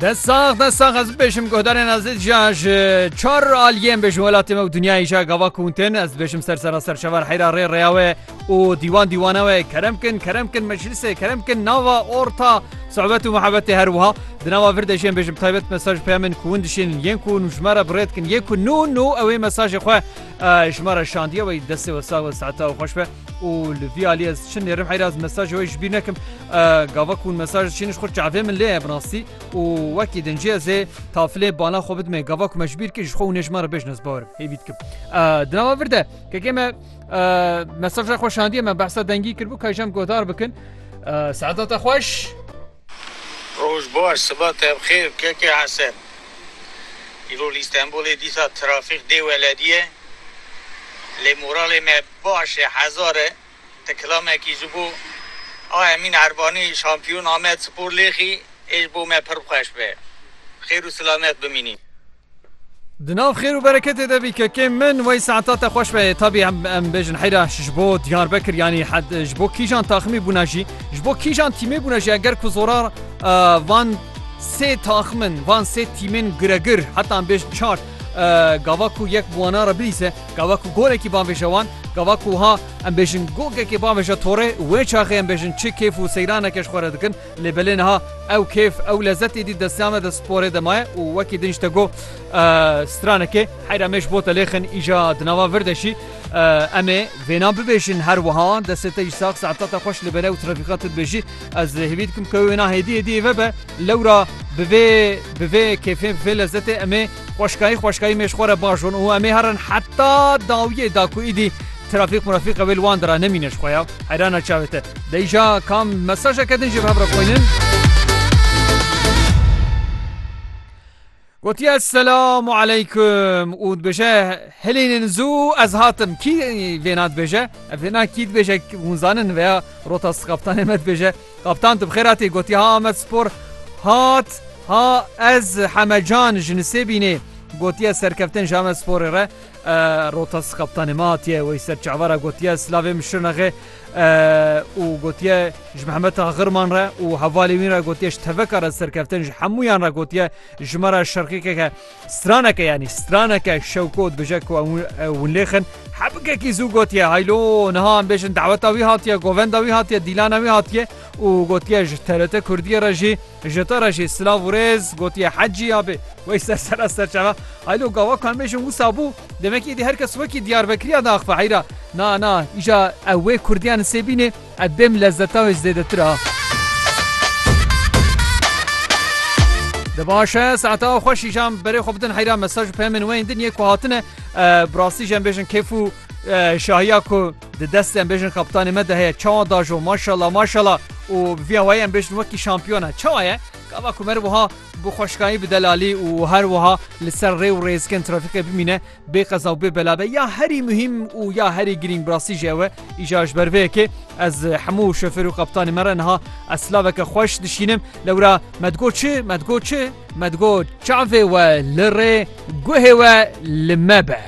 De sax de sax ez bêşim guhdarên ez ja ji çar aliyên bêjin welatê me û dunyayê ja gava kuntin ez bêşim ser sera serçevan heyra rê rêya we û dîwan dîwana we kerem kin kerem kin meclisê kerem kin nava orta sohbet û muhebetê her wiha di nava vir dejên bêjim taybet mesaj peyamên ku hûn dişên yên ku hûn ji me re birêt kin yê ku nû nû ew ê mesajê xwe ji me re şandiye wey destê we sağ we saeta xweş be û li vî alî ez çi nêrim heyra ez mesajê wê ji bîr nekim gava ku mesaj çîniş xwe çavê min lê binastî û wekî din cê zê tafilê bana xwe bidmê gava ku me ji bîr kir ji xwe û nêjman re bêj ez bawir hêvî dikim dinava vir de kekê me mesaja xwe şandiye me behsa dengî kirbû ka jem godar bikin Seadata xweş. Roj baş, siba te bi xêr keke Hesen. Îro li Îstenbolê dîsa trafîk dê welediye. Lê moralê me baş e hezar e. Ti kilamekî ji bo a Emîn Erbanî şampiyon Amedspor lêxî ê ji bo me pir xweş be. Xêr û silamet bimînî. Di nav xêr û bereketê de bî kekê min wey saeta te xweş be tabî em bêjin heyra ji bo Diyarbekir yanî ji bo kîjan taximî bûna jî ji bo kîjan tîmê bûna jî eger ku zorar van sê taximin van sê tîmên giregir heta em bêjin çar gava ku yek buwana re bilîse gava ku golekî banvêje wan gava ku ha em bêjin gogekê banvêje torê wê çaxê em bêjin çi kêf û seyraneke ji xwe re dikin Lê belê niha ew kêf ew lezet êdî destya me de sporê de maye û wekî din ji te got stranekê heyra me ji bo te lêxin îja di nava vir de şî em ê vêna bibêjin her wiha destê te jî sax saeta te xweş li bere û trafîqa tu dibêjî ez lê hêvî dikim ke wêna hêdî hêdî êve be lewra bi vê bi vê kêfê bi vê lezetê em ê xweşkayî xweşkayî mêj xwe re bajon û em ê herin heta dawiyê da ku îdî Trafîk murafîka wê li wan dira nemîne ji xwe ya. Heyrana çavê te. Dey ja kam mesajeke din jê bi hev re xwînin. Gotiye Esselamu Aleyküm û dibêje hilênin zû ez hatim kî vêna dibêje ev vêna kî dibêje hûn zanin veya rota kaptanê me dibêje kaptan tu bixêr hatî gotiye ha Ahmet Spor hat ha ez hemecan ji nisê bînê gotiye serkeftin ji Ahmet Sporê re Rotas kaptanê me hatiye wey ser çavara gotiye silavê min şirnexê û gotiye ji mehemeta xirman re û hevalê wîn re gotiye ji teveka re serkeftin ji hemûyan re gotiye ji me re şerqêkeke straneke yanî straneke şewko dibêje ku hûn lêxin hebikekî zû gotiye haylo niha em bêjin daweta wî hatiye govenda wî hatiye dîlana wî hatiye û gotiye ji terete Kurdiye re jî Ji te re jî silav û rêz gotiye Hecî abê. Wey ser ser ez serçava heylo gava ku em bêjin wisa bû. Demek êdî her kes wekî Diyarbekiriya diaxive heyra. Na na îja ew wê kurdiya li Sêbînê ev bêm lezzetan wê ji zêdetir a. Di baş e saeta xwe şîjan berê xwe bidin heyra mesaj û peyamên we yên din yê ku hatine. Bi rastî jî em bêjin kêf û şahiya ku Di destê em bêjin kaptanê me de heye çawa dajo maşala maşala û bi vî awayî em bêjin wekî şampiyon e. Çawa ye? Gava ku me wiha bi xweşkayî bi delalî û her wiha li ser rê û rêzgên trafîkê bimîne bê qeza û bê bela be ya herî muhîm û ya herî girîng bi rastî jî ew e. Îja ji ber vê yekê ez hemû şofêr û kaptanê me re niha ez silaveke xweş dişînim. Lewra me digot çi? Me digot çi? Me digot çavê we li rê guhê we li me be.